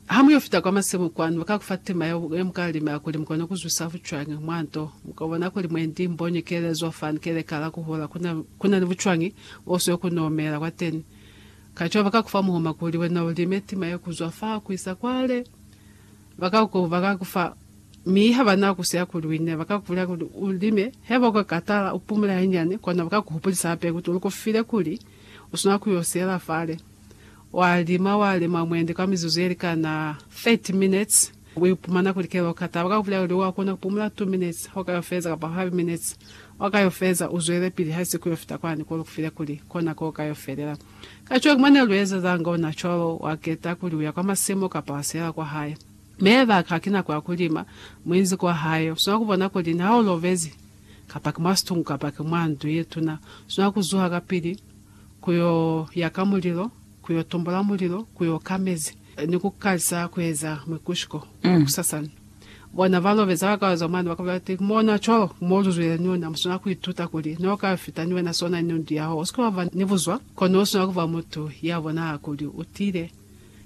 Ha mu yo fita kwa masimu kwanu, ba ka ku fa tema yeo ye mu ka lima kuli mu kone ku zwisa bucwañi mwa nto. Mu ka bona kuli mwe ndi mbonyi keelezo fan ke lekala ku hula ku na, ku na ni bucwañi bo siyo ku n'o mela kwateni. Kacwalo ba ka ku fa muhuma kuli wena u lime tema ye ku zwa fa ku isa kwale. Ba ka ku, ba ka ku fa, mi ha ba na ku siya kuli u ine. Ba ka ku bulela kuli u lime, haiba u ka katala, u pumule hanyane, kono ba ka ku hupulisa hape kuli u lu ku file kuli u swanela ku yo siyela fale. Wa lima, wa lima mwendi kwa mizuzu ye likana 30 minutes. U ipumana kuli kela u kata. Ba ka ku bulela kuli wa kona ku pumula 2 minutes ha u ka yo feza kapa 5 minutes. Wa ka yo feza, u zwelepili ha si ku yo fita kwani ko lu ku file kuli kona ko u ka yo felela. Kacwalo ki mwa ne lu ezezanga ona cwalo. Wa keta kuli u ya kwa masimu kapa wa siela kwa hae. Mi haiba ha ki nako ya ku lima, mu inzi kwa hae, u swanela ku bona kuli niha u lobezi, kapa ki mwa situngu kapa ki mwa ndu ye tuna, u swanela ku zuha kapili, ku yo yaka mulilo, ku yo tumbula mulilo, ku yo ka mezi, ni ku kalisa ku eza mwikushuko wa ku sasana. Bona ba lobeza ba ka zwa mane, ba ka bulela ati, Mona cwalo mo lu zwile ni ona, mu swanela ku ituta kuli, n'o ka fita ni wena sona ni ndu ya hao. U si ke wa ba ni buzwa, kono u swanela ku ba mutu ya bonahala kuli u tiile,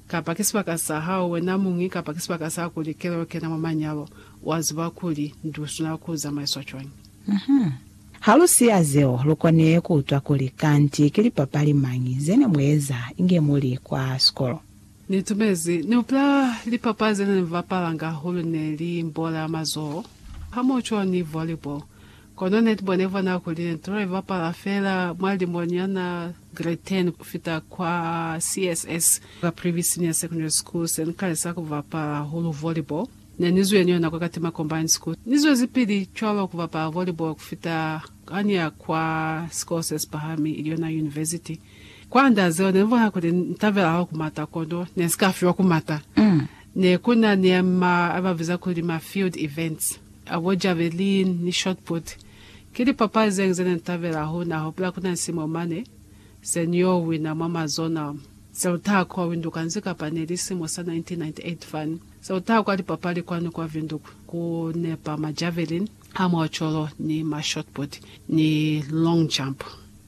kapa ki sibaka sa hao wena muñwi, kapa ki sibaka sa kuli kelelo kena mwa manyalo. Wa ziba kuli ndu i swanela ku zamaiswa cwañi. Ha lu siya zeo, lu koni ku utwa kuli, Kanti ki lipapali mañi ze ne mu eza inge mu li kwa sikolo? Ni tumezi. Ni hupula lipapali ze ne ni bapalanga hulu ne li bola ya mazoho, hamoco ni volleyball. Kono ne ni bonile f'o nako li ne ni tula ni bapala fela mwa lilimo nyana, grade 10 ku fita kwa CSS, ka Privy Senior Secondary School, se ni kalisa ku bapala hulu volleyball. Ne ni zwi yeniyo nako kati macombines kut ni zwezi pili cwalo ku bapala volleyball ku fita ha ni ya kwa sikolo se si pahami ili yona university. Kwa nda zeo ne ni bona kuli ni tabela hahulu ku mata kono ne ni si ka fiwa ku mata. Ne ku na ni a ma a ba biza kuli ma field events a bo javelin ni shot put. Ki lipapali zeñwi ze ne ni tabela hahulu. Na hupula ku na ni simo mane se ni yo wina mwa ma zonal se lu taha kwa Windhoek hansi kapa ne li simo sa 1998 fani. Sa kutaha kwa lipapali kwani kwa Windhoek ku nepa ma javelin, ama ocolo, ni ma shotput, ni long jump.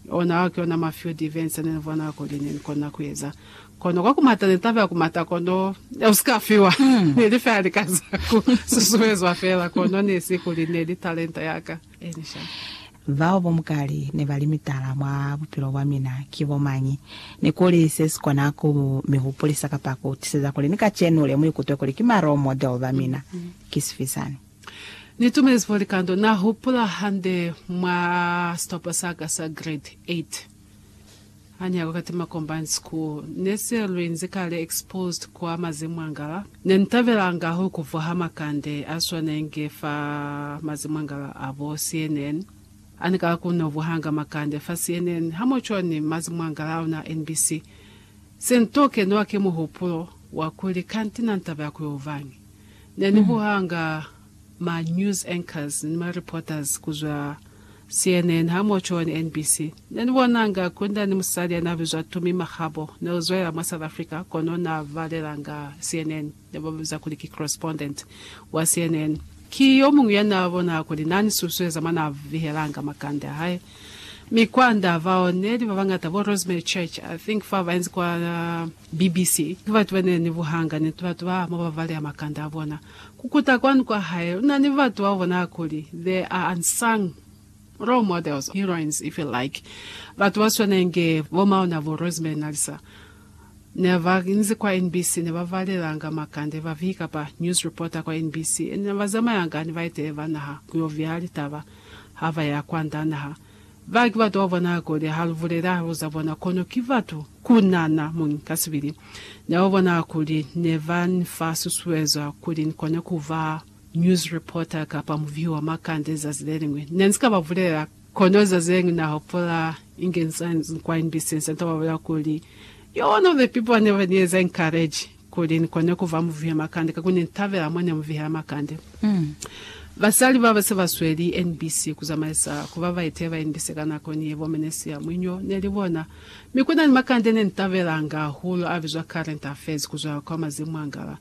Ona a ki ona ma field events ne ni bona kuli ne ni kona ku eza. Kono kwa ku mata ne taba ya ku mata kono ya ku si ka fiwa. Ne li feela lika za ku susuezwa feela, kono ne si kuli ne li talenta ya ka. Bao bo mukali ne ba li mitala mwa bupilo bwa mina ki bo mañi? Ni kuli se si kona ku mu mi hupulisa kapa ku tiseza kuli ni kacenu le mu ikutwe kuli ki ma role model ba mina ki sifi sani? Ni tumezi fo likando Na Hupula Hande mwa Sitopo Sa Ka sa Grade 8. Ha nyako kati ma combined school ne se lu inzi kale exposed kwa mazimwangala ne ni tabelanga hulu kuvwa ha makande a swanenge fa mazimwangala a bo CNN a ni kala ku no vwa hanga makande fa CNN ha mo cwa ni mazimwangala a ona a NBC se ni to kenwa ki muhupulo wa kuli kanti na ni tabela ku yo vañi ne ni vwa hanga ma news anchors ni ma reporters ku zwa CNN hamoco ni NBC. Ne ni bonanga Kunda ni musali ya n'a bizwa Tumi Makgabo. Ne u zwela mwa South Africa, kono n'a balelanga CNN. Ne ba mu biza kuli ki correspondent wa CNN. Ki yo muñwi ya n'a bona kuli n'a ni susueza mwa n'a vihelanga makande a hae. Mi kwand'a bao ne li ba bañata, bo Rosemary Church, I think fa ba inzi kwa. BBC. Ki batu ba ne ni buhanga, niti batu ba mo ba baleha makanda a bona. Ku kuta kwanu kwa hae, u na ni batu bao bona kuli, they are unsung role models, heroines if you like, batu ba swana inge bo mauna bo Rosemary Nalisa. Ne ba inzi kwa NBC, ne ba balelanga makanda e ba vihi kapa news reporter kwa NBC, ene ne ba zamayanga ni baetele ba naha ku yo viha litaba ha ba ya kwanda naha. Ba ki batu bao bona kuli ha lu bulela halo za bona, kono ki batu ku nana mo ngi ka sibili. Ne ba bona kuli ne ba ni fa susuezo kuli ni kone ku ba news reporter kapa mubihi wa makande zazi le liñwi. Ne ni si ka ba bulela, kono zazi le liñwi na hopola inge ni sa ni kwa NBC, ni sa ni ta ba bulela kuli, Yo, one of the people ba ne ba ni eza encourage. Kuli ni kone ku ba muvihe makande, kakuli ne ni tabela mwa ne mu vihela makande. Basali ba ba se ba sweli NBC ku zamaisa ku ba baeteleli ba NBC ka nako ni ye bo Menesia Mwinyo ne li bona. Mi ku na ni makande ne ni tabelanga hahulu a bizwa Current Affairs ku zwela kwa mazimu a ngala.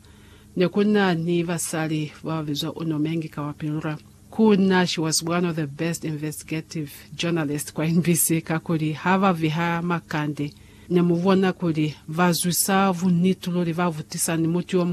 Ne ku na ni basali ba ba bizwa Uno Mengi Kawapilura. Ku na, she was one of the best investigative journalist kwa NBC kakuli ha ba viha makande. Ne mu bona kuli ba zwisa bunniti luli, ba butisa ni mutu yo muñwi.